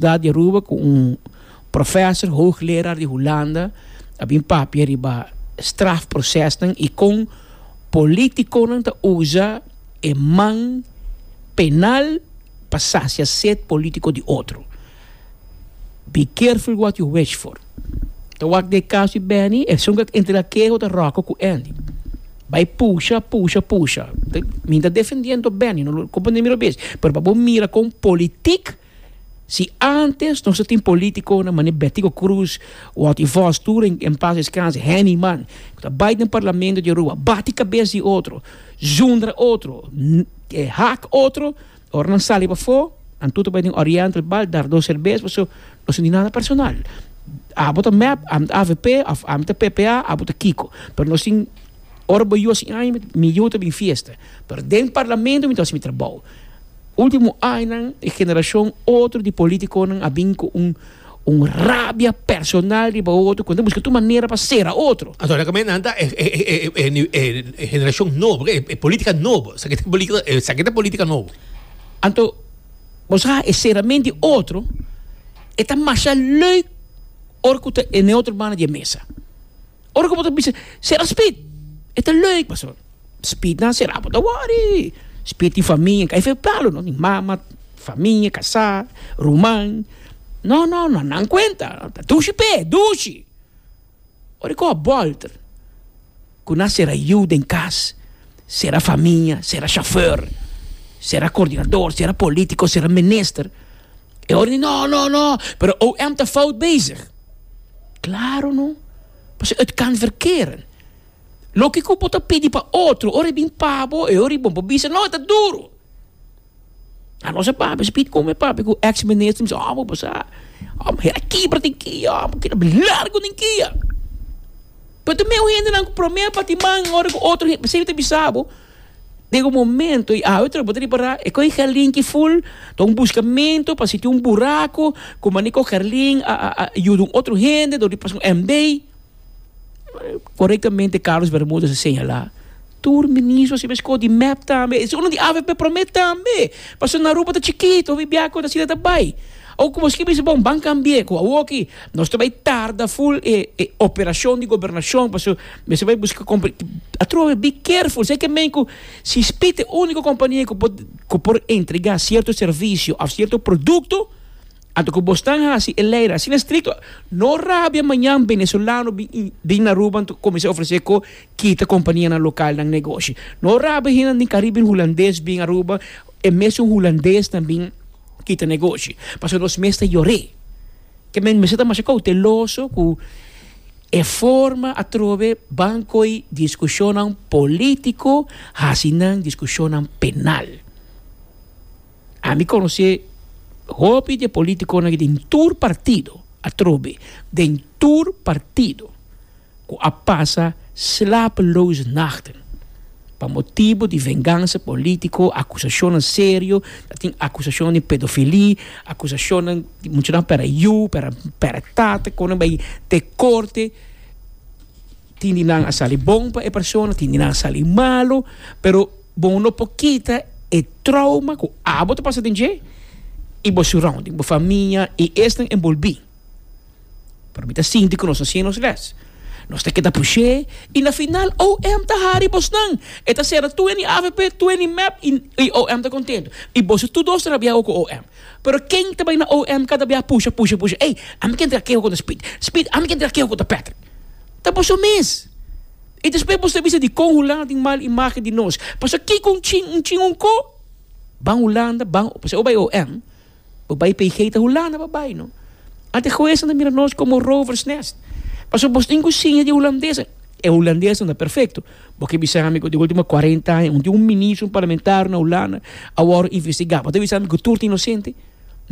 Dad di Aruba cu un professor, hoogleraar, di Hulanda a bin papia riba strafprocesnan y con politiconan ta uza e man penal pa sacia sed politico di otro. Be careful what you wish for. Ta wak den e caso di Benny, esun cu a entrega queho ta Rocco cu Andy. Bay pusha, pusha, pusha. Mi no ta defendiendo Benny no, lo comprende mi lo bes, pero pa bo mira con politic. Si antes nos a tin politiconan manera Betico Cruz, Walty Vos tur en en paz descanse, Henny man, cu ta bay den parlamento di Aruba bati cabes di otro, zundra otro, hak otro, ora nan sali pafo nan tur ta bay den Oriental bar dar dos cerbes, pasobra nos no tin nada personal, abo ta mep, ami ta avp of ami ta ppa, abo ta kico, pero nos tin, ora bo yu a si aña mi yu ta bin fiesta, pero den parlamento mi ta haci mi trabao. Ultimo añanan e generacion otro di politiconan a bin cu un un rabia personal riba otro cu nan ta busca tur manera pa cera otro. Anto esaki nan ta e generacion nobo, e politica nobo, esaki ta politica nobo. Anto bo sa e ceramen di otro e ta masha leuk ora cu ta e neutro man na di e mesa. Ora ku bo ta bisa, Sera spit? E ta leuk, pastor. Spit na sera, bo ta wòri. Spit tin famia. Kai fe palo, no? Tin mama, famia, kasá, ruman. No, no, no. Nan kuenta. Ta dushi p'e, dushi. Ora e kò bòlter ku nan sera yu den kas, sera famia, sera shofèr, sera koordinador, sera polítiko, sera minister, e ora di no, no, no, pero OM ta fout bezig. Klaro no, pasobra et kan verkeren. Loke ku bo ta pidi pa otro, ora e bin pa bo, e ora di bo, bo bisa, no, e ta duru. A nos e pape spit como e pape cu ex minister mi si oh bo sa bo hera kibra den ki a bo keda bini largo den ki a pero te mesmo hende nan cu prome pa timan ora cu otro hende sibi ta bisa bo den un momento y awe tras bo ta repara e coge carlin ki full ta un buscamento pa si tin un buraco cu mane cu carlin a a a yuda un otro hende dor di pasobra un MD. Korektamente Carlos Bermudez a señala, tur ministronan a scoge di mep tambe, esei unu di avp prome tambe, pasobra na Aruba ta chikito, Subiaco asina ta bay. Awor como esquina mester bon ban cambie, cu awor aki nos ta bay tarda full e e operacion di Gobernacion pasobra mester bay busca compra, atrobe be careful esaki ta mean cu si Speed ta e unico compania cu por entrega cierto servicio of cierto producto. Anto ku bos tan hasi e lei asina strikto, no rabia mañan benezolano bin bin na Aruba anto ku kuminsá ofresé ku kita kompanianan lokal nan negoshi. No rabia hende di Kariben hulandes bin Aruba, e mesun hulandes nan bin kita negoshi. Pasobra nos mes ta yor'é. Ke men mester ta masha kouteloso ku e forma atrobe ban koi diskushonnan polítiko hasi nan diskushonnan penal. Ami conoce hopi de politiconan den tur partido, atrobe, den tur partido, cu a pasa slapeloze nachten pa motibo di venganza politico, acusacionnan serio, ta tin acusacionnan di pedofilia, acusacionnan di muchanan pera yu, pera, pera tata, con nan bay te corte, tin di nan a sali bon pa e persona, tin di nan a sali malo, pero. Bo no por kita e trauma cu abo ta pasa den dje y bo surrounding, bo famia y esnan enbolbi. Pero mi ta sinti cu nos ta siña nos les. Nos ta keda pushé y na final OM ta hari bosnan. E ta cera twenty avp, twenty mep y OM ta contento. Y boso tur dos ta rabia awo cu OM. Pero ken ta bay na OM cada bia pusha, pusha, pusha, ey, ami ken traha kehua cu ta Speed, Speed, ami ken traha kehua cu ta Patrick. Ta boso mes. I despues boso ta bisa di kon Hulanda tin mal imagen di nos. Pasobra kiko un chin, un chin un ko? Ban Hulanda, ban, pasobra o bai OM, bo bai PG ta Hulanda bo bai no. Ante huesnan ta mira nos komo rover's nest. Pasobra boso tin ku siña di Hulandes. E Hulandes no ta perfekto. Bo ke bisa ami ku den ultimo kuarenta aña un tin un ministro, un parlamentario na Hulanda a wòrdu investigá. Bo ta bisa ami ku tur ta inosente?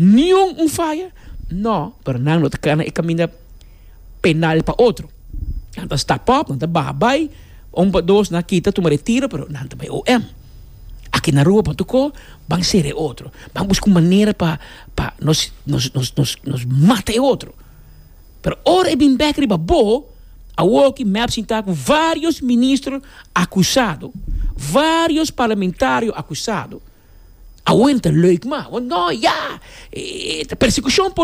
Niun un faya? No, pero nan no ta kana e kaminda. penal pa otro. Nan ta stap op, nan ta baha bai, un pa dos nan a kita tuma retiro, pero nan ta bai OM. Aki na Aruba Pantuko ban sera e otro, ban busca un manera pa pa nos nos nos nos nos mata e otro. Pero ora e bin bek riba bo, awo aki mep sinta cu varios ministro acusado, varios parlamentario acusado, awo e no ta leuk mas, awo no ya, e ta persecucion.